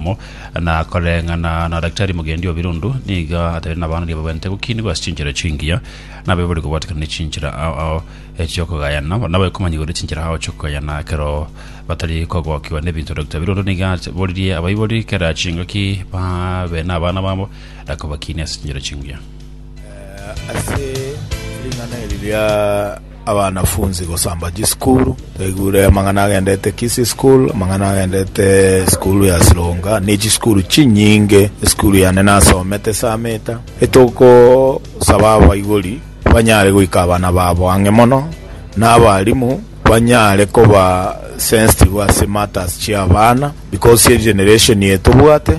Mo, na koreng'ana na daktari mogendi o birundu nigo atari nabaanani ababwente gokiinigwa ase chinchera chingiya, na abe bari kobwatekana ne chinchera ao ao eh, chi'okogayana, na abe komanyigwa ne chinchera ao chi'okogayana ekero batari kogokigwa nebinto. Dr. Birundu nigo aboririe abaibori kera chingaki babe nabana babo na kobakiinia ase chinchera chingiya. Eh, ase ring'ana eri ria abanafunsi gosamba chisukuru, twaigure amang'ana agendete Kisii school, amang'ana agendete esukuru ya Sironga, ne chisukuru chinyinge, esukuru yane nasomete esameta, etogosaba abaibori banyare goika abana babo ang'e mono, na abarimu banyare koba sensitive ase matters chi'abana, because egeneration eye tobwate.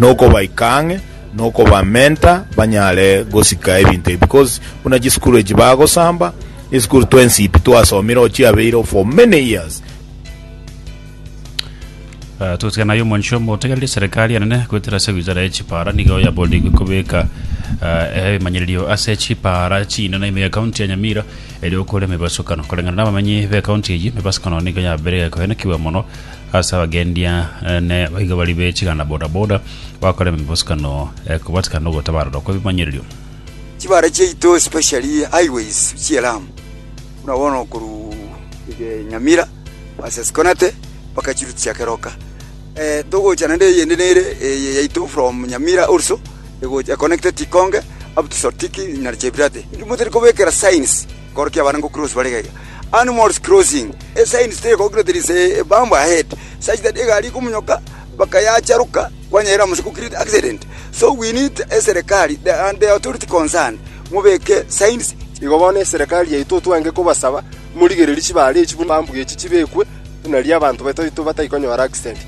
nokobaika ang'e, nokobamenta banyare gosika ebinto ebi, because buna chisukuru echi bagosamba, esukuru twensipi twasomire oo chiabeireo for many years. Ah, Totigana aye omwancho omotegereri eserekari enene goetera ase wizara ye chipara nigo yaboorigwe kobeka ah, ebimanyererio ase chipara chinene ime ya kaunti ya Nyamira eri okore emebasukano koreng'ana nabamenyi be kaunti eye emebasukano nigo yabeire egekoenekigwa mono Ase abagendia ne baiga bari be chiganda bodaboda bagokora emebosukano ekobatikana nogotabarorwa kw'ebimanyererio. Chibare chiaito especially highways chie Lamu buna bono korwa ege Nyamira versus Konate mpaka chiruti chia Keroka. Eh, togocha naende eyende nere eye yaito from Nyamira also egocha econnected Ikonge up to Sotiki na Chebirate. Inwe tari kobekera signs. Koro ki abare ngocross bare iga iga? Animals crossing, a sign stated concretely with a bump ahead such that egari ekomonyoka bakayacharoka kwanyerire amo ase create accident. So we need eserekari and the authority concerned mobeke signs Igo bono eserekari yaito twange kobasaba morigererie chibare echi buna bump echi chibekwe buna riria abanto baito batai konyora accident.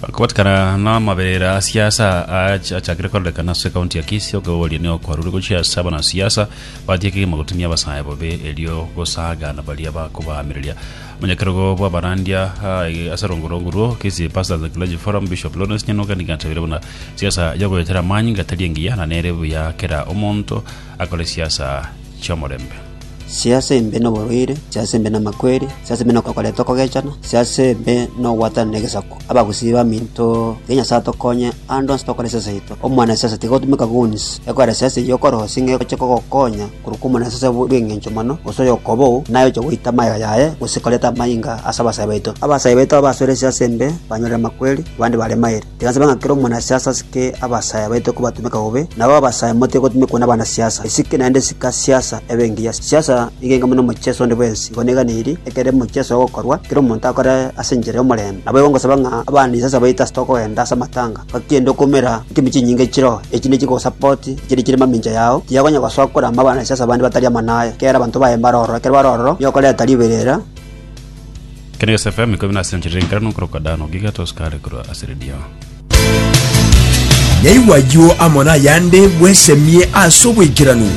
Kobatikana n'amabeera a siasa ach- achakire korekana ase ekaunti ya Kisii, okoboria nigo kwarure gochia ase abanasiasa batia ekegima gotumia abasae bobe erio gosagana baria bakobaamireria. Omonyakerogo bw'abarandia ah, eh, ase rongorongo rwo Kisii Pastors and Clergy Forum, Bishop Lawrence Nyanuka nigo atabire buna siasa ya goyetera amanyinga tari engiya na nere buya kera omonto akore siasa chi'omorembe. Si'ase embe noborwaire, si'ase embe namakweri, si'ase embe nokoreta okogechana, si'ase embe nogwatana negesaku. Abagusii baminto, tiga Nyasae atokonye ande onsi tokore siasa yaito. Omwana siasa tiga otumeka guns, ekorera siasa eyio okore gose ng'ai egochia kogokonya, korwa kw'omwana siasa bw'engencho mono, gose oyokobou, naye oche goita amaiga yaye, gose koreta amainga ase abasae baito. Abasae baito abasore si'ase embe banyorire amakweri, abande bare mairi. Tigasaba ng'a kera omonasiasa asike abasaayi abaito kobatumeka bobe, nabo abasaayi motige gotumekwa nabanasiasa. Esike naende sika siasa ebe engiya. Siasa nigo enke buna omochieso onde bwensi. Igo neganeirie, ekero omochieso ogokorwa, kera omonto akore ase enchera y'omorembe. Nabo igo ngosaba ng'a abanisiasa baito ase tokogenda ase amatanga, gaki ende okoumera nkime chinyinga echireo, echi ne chikogosapoti, echiria chire mamincha yao, tiyakonya gosoa korama abanasiasa abande batari amo naye, kera abanto baye mbare ororo. Ekero bare ororo, nigo okoreta riberera. Kenegesi FM ikomi na ase enchera enkeranu okorokwa Dan Ogiga tosikare korwa ase redio. Nyaigwa ayio amo nayande bwesemie ase oboikeranu.